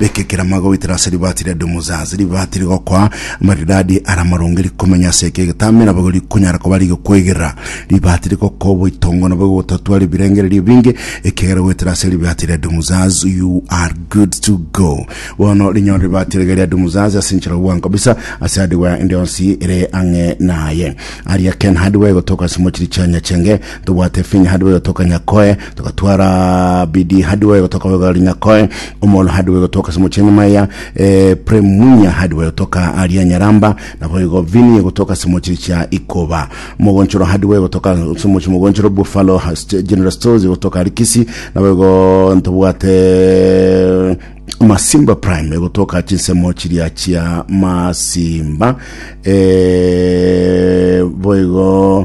Bekekera amagoitera ase ribaati ria Dumuzaz, ribaati rigokoa amaridadi ara amarunge, rikomenya ase eke egetamera, boigo rikonyara koba rigokoigera. Ribaati rigokoa oboitongo nabo egotatwara ebirengererio ebinge, ekiagera goetera ase ribaati ria Dumuzaz you are good to go. Bono rinyore ribaati riria ria Dumuzaz ase enchera y'obwango kabisa ase hardware ende yonsi ere ang'e naye. Aria Ken Hardware egotoka ase mochiri chia Nyachenge, tobwate Finn Hardware egotoka Nyakoe, togotwara bidi hadi bobe gotoka bobe gari nyakoe omono hadi bobe gotoka simocheni maya eh, premunya hadi bobe gotoka aria nyaramba na bobe go vini gotoka simochi cha ikoba mogonchoro hadi bobe gotoka simochi mogonchoro buffalo St- general stores gotoka rikisi na bobe go ntobwate masimba prime gotoka chinsemo chiria chia masimba eh, boigo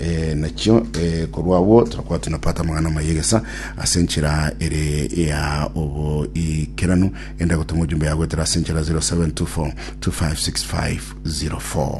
Ee, nakio ee, korwa agwo torakora tunapata amang'ana ama yegesa ase enchera ere ya oboikeranu enda gotoma ojumbe yagoetera ase enchera 0724 256504